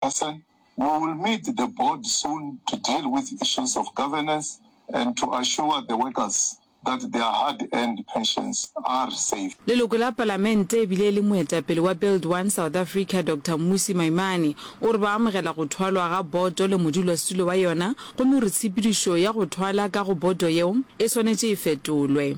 A se, We will meet the board soon to deal with issues of governance and to assure the workers that their hard-earned pensions are safe. Leloko la Palamente e bile e le moetapele wa Build One South Africa, Doctor Mmusi Maimane, o re ba amogela go thwalwa ga boto le modulasetulo wa yona gomme o re tshepedišo ya go thwala ka go boto yeo e swanetše e fetolwe.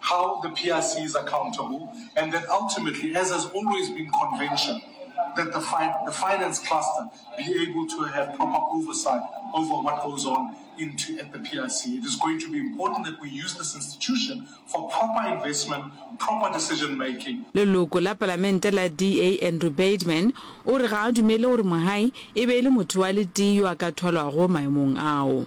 How the PRC is accountable and that ultimately, as has always been convention, that the, fi the finance cluster be able to have proper oversight over what goes on into at the PRC. It is going to be important that we use this institution for proper investment, proper decision making. Leloko la palamente la DA Andrew Bademan o re ga a dumele gore Mohae e be e le motho wa letee yo a ka thwalwago maemong ao.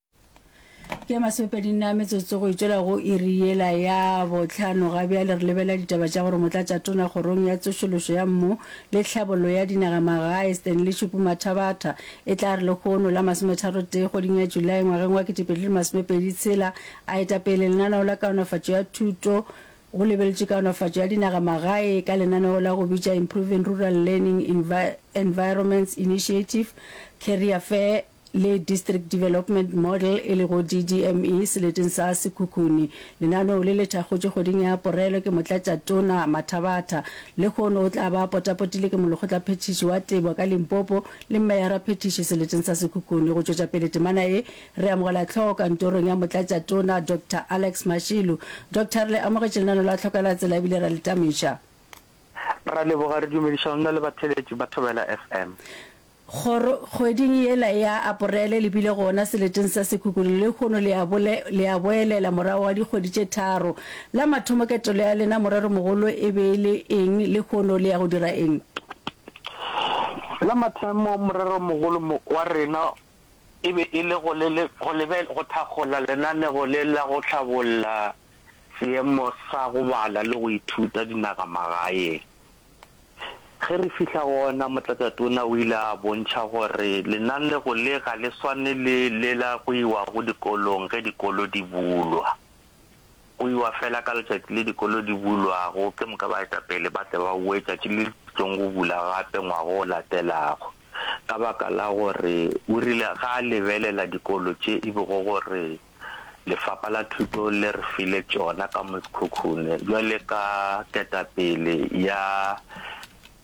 ke masopedi nna metsotso go itšwela go iri yela ya botlhano ga bjale re lebelela ditaba tša gore motlatša tona kgorong ya tsošološo ya mmu le tlhabollo ya dinaga magae stanley šupu mathabatha e tla re lekgono la masometharotee kgweding ya julae ngwageng wa ketepedi le masomepedi tshela a etapele lenaneo la kaonafatšo ya thuto go lebeletše kaonafatšo ya dinaga magae ka lenaneo la go bitša improving rural learning Envi environments initiative carrier fair le District Development Model e lego DDME seleteng sa Sekhukhune. Lenaneo le le thakgotšwe kgweding ya Aporele ke Motlatšatona Mathabatha. Lehono o tla ba a potapotile ke Molekgotlaphethiši wa Tebo ka Limpopo le Mmeyaraphethiši seleteng sa Sekhukhune. Go tšwetša pele temana e, re amogela tlhogo kantorong ya Motlatšatona Doctor Alex Mashilu. Doctor, re le amogetše lenaneo la Tlhoko la Tsela ebile ra le tamiša. Ra leboga, re dumediša go nna le batheeletši ba Thobela FM. Kgoro, kgweding yela ya Aporele le bile gona seleteng sa Sekhukhune lehono le a bole, le a boelela morago ga dikgwedi tše tharo. La mathomo ketelo ya lena morero mogolo e be e le eng lehono le ya go dira eng? La mathomo morero mogolo mo, wa rena e be e le go le, le, go lebe, go thakgola lenaneo le la go hlabolla seemo sa go bala le go ithuta dinagamagaeng. Ge re fihla gona, Motlatšatona o ile a bontšha gore lenaneo le ga le swane le le la go iwago dikolong ge dikolo di bulwa. Go iwa fela ka letšatši le dikolo di bulwago, ke moka baetapele ba tle ba boe letšatši le le tlong go bula gape ngwaga o latelago, ka baka la gore o rile ga a lebelela dikolo tše e bego gore Lefapa la Thuto le re file tšona ka Moskhukhune bjale ka ketapele ya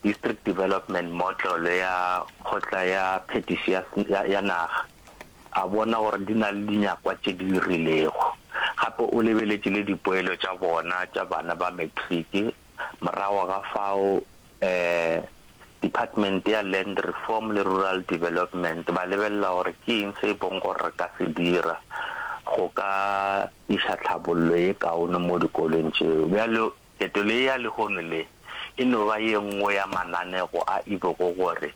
District Development Motlolo ya Kgotla ya Phetiši ya, ya, ya Naga, a bona gore di na le dinyakwa tše di rilego. Gape o lebeletše le dipoelo tša bona tša bana ba matric Morago ga fao um Department ya Land Reform le Rural Development ba lebelela gore ke eng se e bong gore re ka se dira go ka iša tlhabollo ye kaone mo dikolong tšeo. Bjalo ketelo ye ya lehono le e no ba ye nngwe ya mananego a e bego gore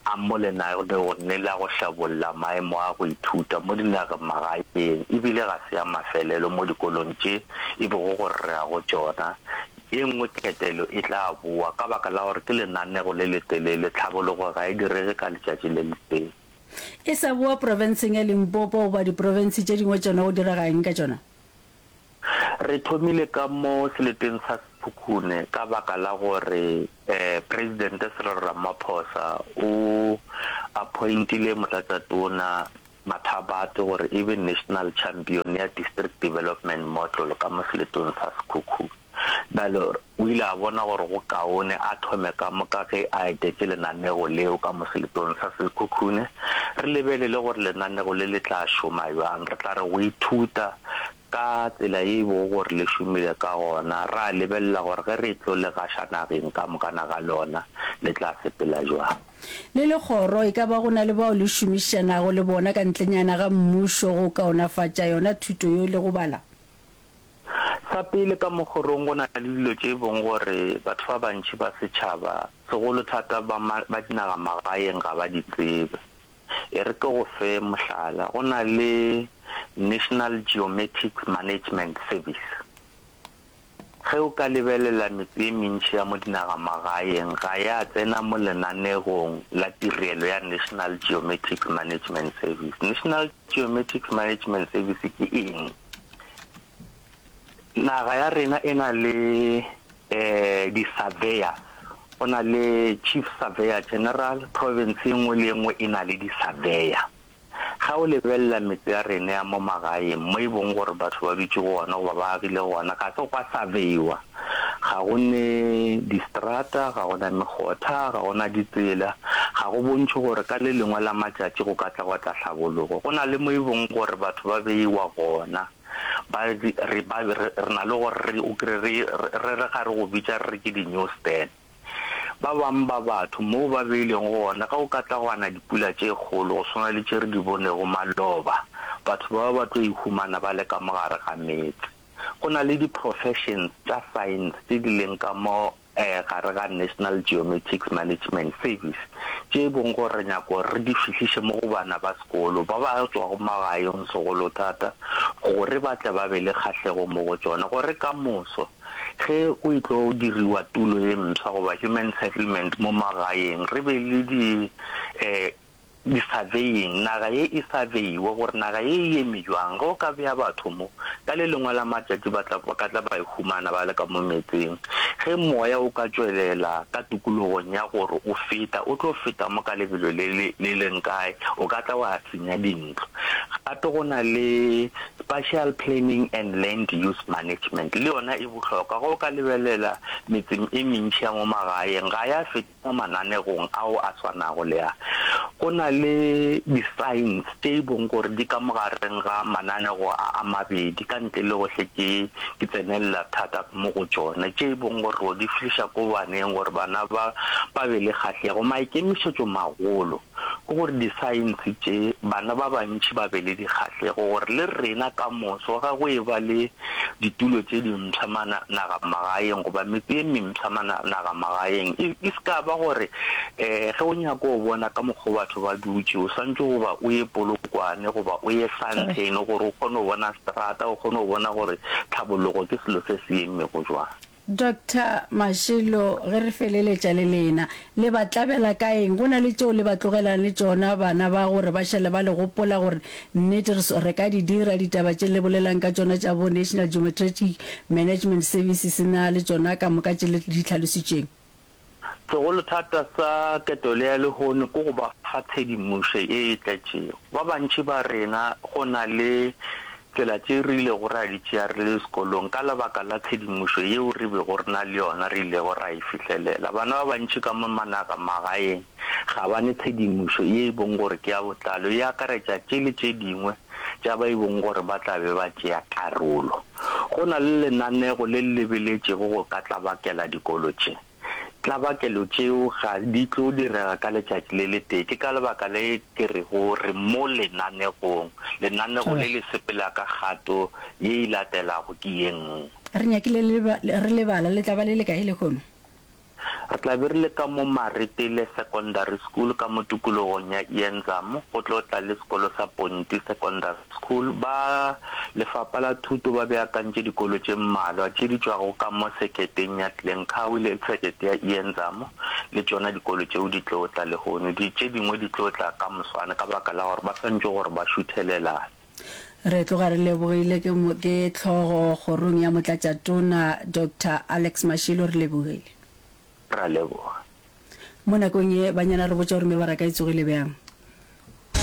A mo le na le go nnela go hlabolla maemo a go ithuta mo dinagemagaeng e bile ga se ya mafelelo mo dikolong tše e bego go rrea go tšona? Ye nngwe ketelo e tla bowa ka baka la gore ke lenanego le letelele, tlhabologo ga e direge ka letšatši le letee. E sa bowa profenseng ya Limpopo goba diprofense tše dingwe tšona go direga eng ka tšona? Re thomile ka mo seleteng sa Sekhukhune ka baka la gore Presidente Cyril Ramaphosa o appointile Motlatšatona Mathabatse gore e be National Champion ya District Development Model ka mo seletong sa Sekhukhune. Bjale o ile a bona gore go kaone a thome ka moka ge a etetše lenanego leo ka mo seletong sa sekhukhune. Re lebelele gore lenanego le le tla šoma bjang. Re tla re go ithuta ka tsela ye e bego gore le šomile ka gona, ra lebelela gore ge re tlo le gaša nageng ka mokana ga lona, le tla sepela bjang. Le le kgoro, e ka ba go na le bao le šomišanago le bona ka ntlenyana ga mmušo go kaonafatša yona thuto yeo le go bala? Sa pele, ka mo kgorong go na le dilo tše e bong gore batho ba bantši ba setšhaba, segolo thata ba ma, ba dinagamagaeng ga ba di tsebe. E re ke go fe mohlala, go na le National Geomatics Management Service. Ge o ka lebelela metse e mentši ya mo dinagamagaeng ga ya tsena mo lenanegong la tirelo ya National Geomatics Management Service. National Geomatics Management Service ke eng? Naga ya rena e na le um di-surveyor, go na le chief surveyor general, province e nngwe le e nngwe e na le di-surveyor. Ga o lebelela metse ya rena ya mo magaeng mo e bong gore batho ba dutse go ona goba ba agile go ona, ga se gwa surveyor. Ga go ne distrata, ga go na megotha, ga go na ditsela. Ga go bontšhe gore ka le lengwe la matšatši go ka tla gwa tla tlhabologo. Go na le mo e bong gore batho ba beiwa gona, ba re ba re re na le gore re o kry-e re re re ga re go bitša re re ke di-newsstand. Ba bangwe ba batho moo ba beilwego gona, ge go ka tla gwa na dipula tše kgolo go swana le tše re di bonego maloba, batho bao ba tlo ihumana ba le ka mo gare ga meetse. Go na le di-professions tša science tše di leng ka mo gare ga National Geomatics Management Service tše e bong gore re nyako gore re di fihliše mo go bana ba sekolo ba ba tšwago magaeng segolo thata gore ba tle ba be le kgahlego mo go tšona gore ka moso ge go e tlo diriwa tulo ye mswa goba human settlement mo magaeng re be le di eh, Disaveying, naga ye e sa beiwe gore naga ye e eme bjang. Ge o ka bea batho mo, ka le lengwe la matšatši ba tla, ba ka tla ba ihumana ba le ka mo meetseng. Ge Moya o ka tšwelela ka tokologong ya gore o feta, o tlo feta mo ka lebelo le le, le leng kae, o ka tla wa senya dintlo. Gape go na le Spatial Planning and Land Use Management, le yona e bohlokwa. Ge o ka lebelela metseng e mentši ya mo magaeng, ga ya feta. Mo mananegong ao a swanago le a, go na le di-signs tše e bong gore di ka mo gareng ga mananego a a mabedi, ka ntle le go hle ke ke tsenelela thata mo go tšona, tše e bong gore ro di fihliša ko baneng gore bana ba ba be le kgahlego maikemišetšomagolo. ke gore disaense tše bana ba bantši ba be le dikgahlego gore le rena ka moso ga go e ba le ditulo tše dimpsha ma nagamagaeng goba metse e mempsha ma nagamagaeng e, e se ka ba gore um ge o nyako o bona ka mokgwa batho ba dutše o santse goba o ye polokwane goba o ye santlhene gore o kgone go bona strata o kgone go bona gore tlhabologo ke selo se se emmego jwang Doctor Mashilo, ge re feleletša le lena, le ba tlabela ka eng? Go na le tšeo le ba tlogelang le tšona bana ba gore ba šale ba le gopola gore nnete re ka di dira ditaba tše le bolelang ka tšona tša bo National Geometritic Management Services na le tšona ka moka tše le di hlalositšeng? Segolothata sa ketelo ya lehono ke go ba fa tshedimošo ye e tletšego. Ba bantši ba rena go na le tsela tše re ilego ra di tšea re le sekolong ka lebaka la tshedimošo yeo re bego re na le yona re ilego ra e fihlelela. Bana ba bantši ka mo managamagaeng ga ba ne tshedimošo ye e bong gore ke ya botlalo e akaretša tše le tše dingwe tša ba e bong gore ba tla be ba tšea karolo. Go na le lenaneo le le lebeletšego go ka tlabakela dikolo tše. Tlabakelo tšeo ga di tlo direga ka letšatši le letee, ke ka lebaka le ke rego re mo lenaneong. Lenaneo le le sepela ka kgato ye e latelago ke ye nngwe. Re nyakile re lebala, le tla ba le lekae lehono? Re tla be re le ka mo Maritile Secondary School ka mo tukulogong ya Ienzam go tlo tla le sekolo sa Ponti Secondary School. Ba Lefapa la Thuto ba beakantše dikolo tše mmalwa tše di tšwago ka mo seketeng ya Glencowie le sekete ya Ienzam, le tšona dikolo tšeo di tlo tla lehono. Di tše dingwe di tlo tla ka moswane ka baka la gore ba swantšwe gore ba šuthelelane. Re tloga re lebogile ke mo ke tlhogo kgorong ya motlatša tona Doctor Alex Mashilo re lebogile. Ra leboga. Mo nakong ye banyana re botša gore mebaraka e tsogile bjang.